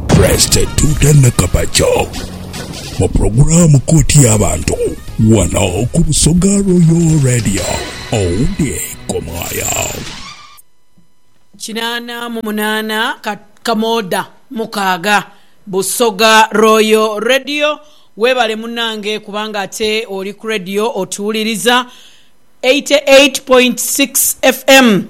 Presite Tuta Nakabakya mu pulogulaamu Kooti y'Abantu wano ku Busoga Royal Radio. Owundi Komaaya. Kinaana mu munaana ka kamoda mukaaga busoga royal radio webale munange kubanga ate oli ku radio otuwuliriza 88.6 FM.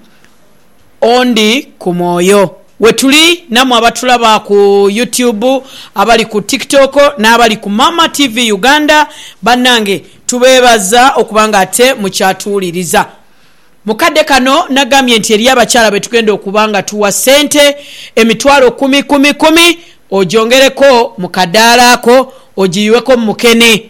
Ondi ku mwoyo. Wetuli namwe abatulaba ku YouTube, abali ku TikTok n'abali ku Mama TV Uganda, banange tubeebaza okuba nga ate mukyatuwuliriza. Mu kadde kano nagambye nti eriyo abakyala be tugenda okuba nga tuwa ssente emitwalo kumi kumi kumi ogyongereko mu kadaala ako ogiyuweko mu mukene.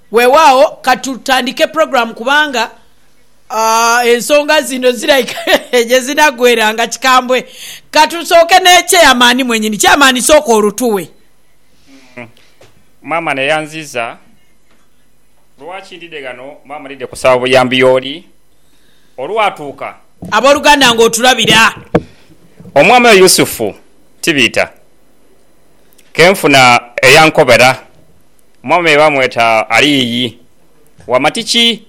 Weewaawo ka tutandike pulogulaamu kubanga ensonga zino ziraika gye zinaggweera nga kikambwe. Ka tusooke ne Chairman mwenyini. Chairman sooka olutuwe. Maama neyanziza lwaki ndidde ghano. Maama ndidde kusaba buyambi y'oli olwatuuka. Ab'oluganda ng'otulabira. Omwami oyo Yusufu Tibiita. ke nfuna eyankobera, Omwami oyo bamweta Aliyi Wamatiki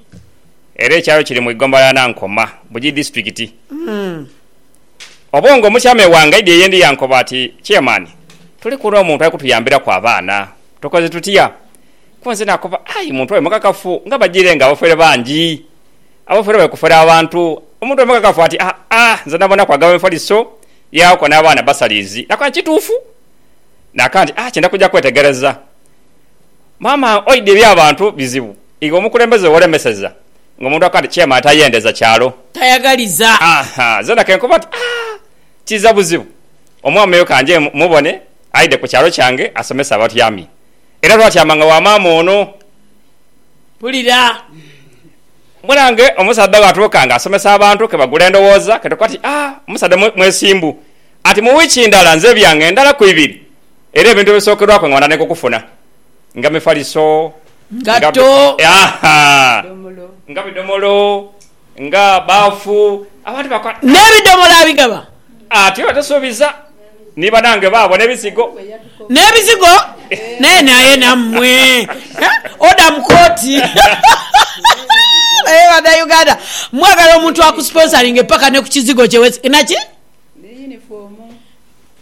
era ekyalo kiri mu igomba lya Nankoma, Bugiri Disitulikiti. Obongo omukyame wange aidha eyendi yankoba ati, Chairman, tuliku n'omuntu ali kutuyambiraku abaana, tukoze tutya? Ku nze nakoba, Aye muntu oyo mukakafu nga bajiire nga abafere bangi, abafere bali kufera abantu. Omuntu oyo mukakafu ati, Aa, nze nabonaku agaba emifaliso. Yaako n'abaana basaliizi nakona kituufu. Naaka nti, Ah, kyenda kuja kwetegereza. Maama oidhi eby'abantu bizibu. Iwe omukulembeze w'olemeseza ng'omuntu akoba nti chairman tayendeza kyalo. Tayagaliza. Aha, zeena ke nkoba nti, Ah, kiiza buzibu. Omwami oyo ka nje mmubone aidhe ku kyalo kyange asomese abatyaami. Era lw'atyaama nga wa maama ono. Mpulira. Mbona nga omusaadha bwatuuka nga asomesa abantu ke bagula endhowooza ke tukoba ti, Ah, omusaadha mwesimbu. Ati, Mu wiiki ndala nze ebyange ndalaku ibiri, era ebintu ebisookerwaku nga bantandika okufuna nga mifaliso, nga, Ngatto. aha, nga bidhomolo, Nga baafu abantu bakola. N'ebidhomola abigaba. Ati batasuubiza ni banange baabo n'ebizigo. N'ebizigo naye naye nammwe oda mu kooti. Naye Bannayuganda mwagala omuntu akusponsoringe paka ne ku kizigo kye naki?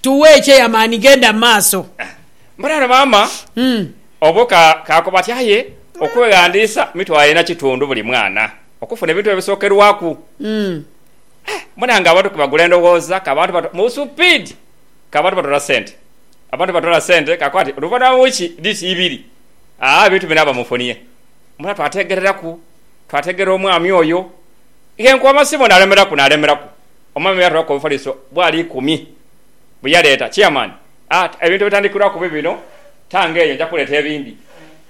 Tuwe ekyeyamaani genda mu maaso. Mbona ono maama obuka kakubati aye okweghandiisa mitwalo ena kitundu buli mwana. okufuna ebintu ebyo bisokerwaku. Mbona nga abantu kebagula endhoghoza ka bantu batu mu supiidi ka bantu batoola sente. Abantu batoola sente kakoba nti oluvanhuma lwa wiiki dhiti ibiri aa ebintu binaaba mu nfuniye. Mbona twateegereraku, twateegerera omwami oyo. Yenkuba amasimu naalemeraku naalemeraku. Omwami oyo yatolaku obufaliso bwala ikumi bwe yaleeta. Chairman. A, ebintu ebitandikirwaku bibino, tange eyo nja kuleeta ebindi.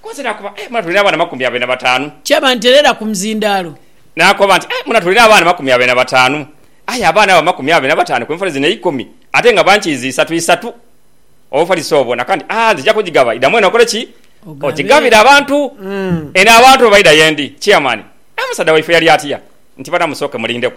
Ku nsi naakoba, Aye muna tulina abaana amakumi abiri na bataanu. Kyaba nti leera ku muzindaalo. Naakoba nti, Aye muna tulina abaana amakumi abiri na bataanu. Aye abaana abo amakumi abiri na bataanu ku nfali zino eikumi, ate nga bankiizi isatu isatu. Obufaliso obwo na kandi, A, nzija kugigaba. Idamu eno okole ki? Ogigabire abantu. Eno abantu bwe baida ye ndi, Chairman, A, musaadha waife yali atya nti banamusooke mulindeku.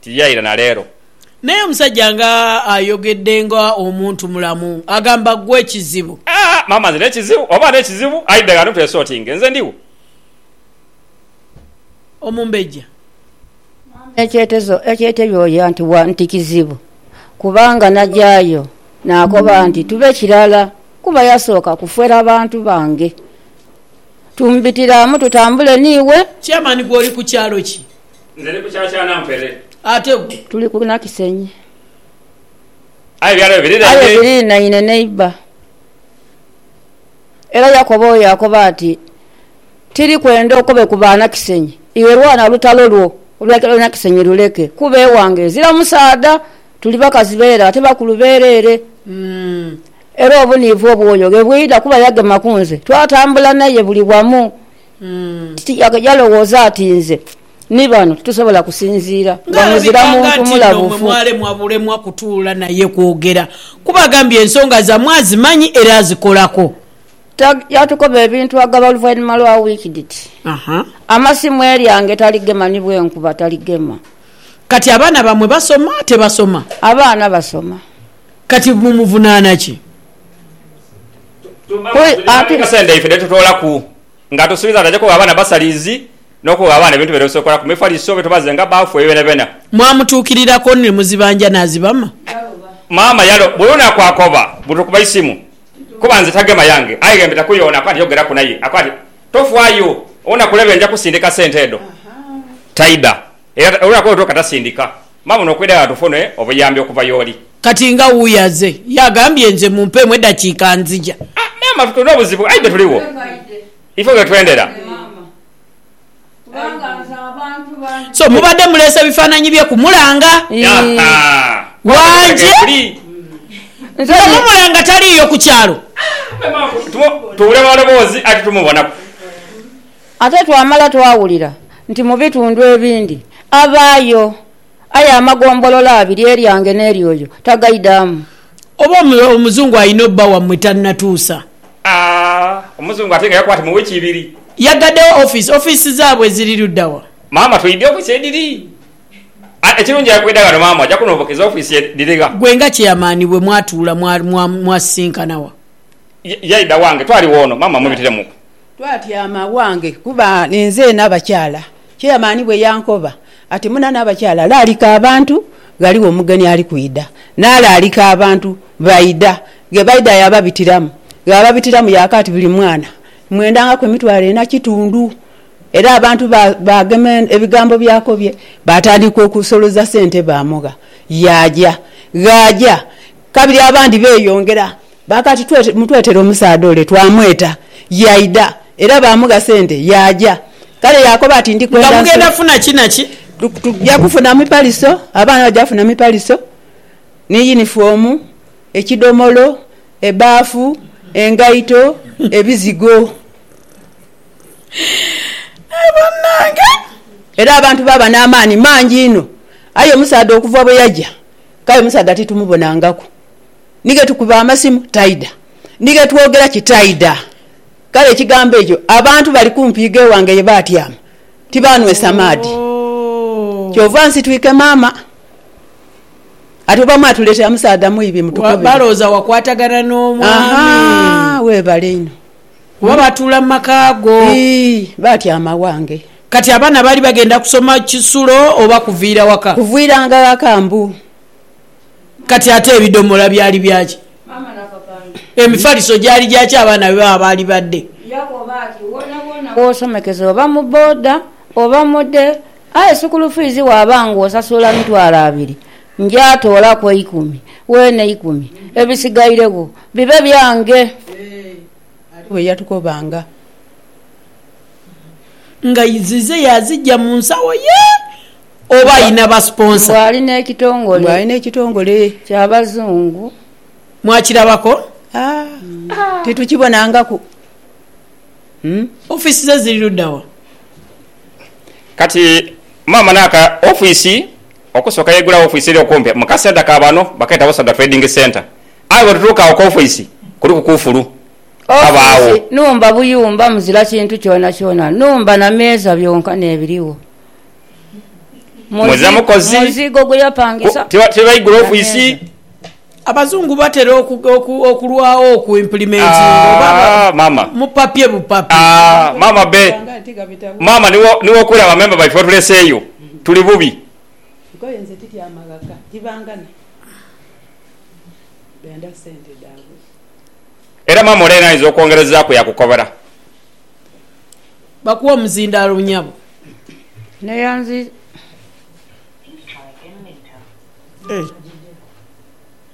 Ti ya ira na leero. Naye omusajja nga ayogedde nga omuntu mulamu. Agamba ggwe kizibu. Aah maama nze nekizibu oba nekizibu ayi dagala don't esortinge nze ndiwo. Omumbejja. Maama ekyetezo ekyetebyoya nti wa nti kizibu kubanga nagyayo nakoba nti tube kirala kuba yasooka kufera bantu bange. Tumbitiramu tutambule niiwe. Chairman gwe oli ku kyalo ki? Nze ndi ku kyakyaana mpere. Ate gwe? Tuli ku Nakisenyi. Aye ebyalo ebyo biriraine? Aye biriraine neiba. Era Yakobo oyo akoba ati, Tiri kwenda okobe ku Baanakisenyi, iwe lwana olutalo lwo olwa Nakisenyi luleke, kuba ewange ezira musaadha, tuli bakazi be ere ate bakulu b'ere ere. Era obuniivu obw'oyo ghe bwidha kuba yagema ku nze, twatambula naye buli wamu. Kiki kyalowooza ati nze ni bano titusobola kusinziira nga muzira muntu mulabufu? Mwalemwa bulemwa kutuula naye kwogera, kuba agambye ensonga zammwe azimanyi era azikolako. Tag, Yatukoba ebintu agaba oluvainhuma lwa wiiki dhiti, Amasimu eryange taligema ni bwenkuba taligema. Kati abaana bammwe basoma tebasoma? Abaana basoma. Kati mumuvunaana ki? Ate n'esente ife dhe tutoolaku nga tusuubiza nti aja kugha abaana basalizi n'okugha abaana ebintu bye beesobola. Mefaliso be tubazenga baafu ebyo byonabyona. Mwamutuukiriraku ni muzibanja n'azibama? Maama yalo buli lunaku akoba buli lw'okuba eisimu kuba nze tagema yange aye ye mbitaku yoona. Akoba nti yogeraku naye. Akoba nti tofaayo, onakulebe nja kusindika sente edho. Taida. Era olwo akoolo twoka tasindika maama ono okwidagala tufune obuyambi okuva y'oli. Kati nga wuuyo aze y'agambye nze mumpeemu eddakiika nzija. Ah maama tulina obuzibu aidhe tuligho ife wetwendera. So mubadde muleese bifaananyi bye kumulanga? Wanje nga mumulanga taliiyo ku kyalo? Tubula maloboozi aye tetumubonaku. Ate twamala twawulira nti mu bitundu ebindi abaayo, aye amagombolola abiri eryange n'eryoyo tagaidhamu. Oba omuzungu alina obba wammwe tanatuusa. Aah omuzungu ate nga yakuba ati mu week ibiri. Yagaddewo office, office zaabwe ziri luddawa? Maama twidhe office edhiri aah ekirungi aye bwedha ghano maama oja kunobokeza office edhiri gha. Gwe nga chairman bwe mwatuula mwasisinkana wa? Yaidha wange twali woono maama mubitiremuku Twatyama aghange kuba ninzeena abakyala. Chairman bwe yankoba ati, Munana abakyala, laalika abantu, ghaligho omugeni ali kwidha. Naalaalika abantu, baidha. Ghe baidha yaababitiramu. Ghababitiramu yaaka ati, Buli mwana mmwendangaku emitwalo ena kitundu. Era abantu baagema ebigambo by'akobye, baatandika okusoloza sente baamugha. Yaaja. Ghaaja kabiri abandi beeyongera. Baakati mutwetere omusaadha ole. Twamweta. Yaidha. Era baamugha sente. Yaaja. Kale yaakoba ati, Ndi kwenda nsule. Nga mugenda funa ki na ki? Tuja kufuna mipaliso, abaana baja kufuna mipaliso, ni yinifoomu, ekidhomolo, ebaafu, engaito, ebizigo. Aye banange! Era abantu baaba n'amaani mangi inho. Aye omusaadha okuva bwe yaja, kale omusaadha titumubonangaku. ni ghe tukuba amasimu taidha, ni ghe twogera ki taidha. Kale ekigambo ekyo abantu bali kumpi gh'ewange ye baatyama, tibaanhwesa maadhi. Kyova nsitwike maama ati oba mwatuleetera musaadha mwibi mutukubire. Balowooza wakwatagana n'omwami. Weebale inho. Kuba baatuula mu maka go. Ii, baatyama ghange. Kati abaana baali bagenda kusoma kisulo oba kuviira waka? Kuviiranga ghaka mbu. Kati ate ebidhomola byali bya ki? Emifaliso gyali gya ki abaana be baba baali badde? Bw'osomekeza oba mu boda oba mode aye sukulu fiizi waaba ng'osasula mitwalo abiri, nja toolaku eikumi, weene eikumi, ebisigairegho bibe byange. Ali bwe yatukobanga nga zize yaazigya mu nsawo ye. oba alina ba sponsor. Mbu ali n'ekitongole. Mbu ali n'ekitongole. Kya bazungu. Mwakirabako? Haa. Titukibonangaku. Office ze ziri ludda wa? Kati maama naka office okusooka yaigulawo office eri okumpi mu ka centre ka bano bakeeta Busoga Trading Centre. Aye bwetutuuka agho ku office kuliku kufulu. Kabaagho. Office nhumba buyumba muzira kintu kyonakyona. Nhumba na meeza byonka n'ebirigho. Muze mukozi ku tibaigula ofiisi. Abazungu batera okulwagho oku implementinga oba mupapye bupapye. Maama be, maama ni w'okuula ba memba baife otuleseeyo. Tuli bubi. Era maama ole yena ayinza okwongerezaaku yakukobola. Bakuwe omuzindaalo nyabo. Neyanziza.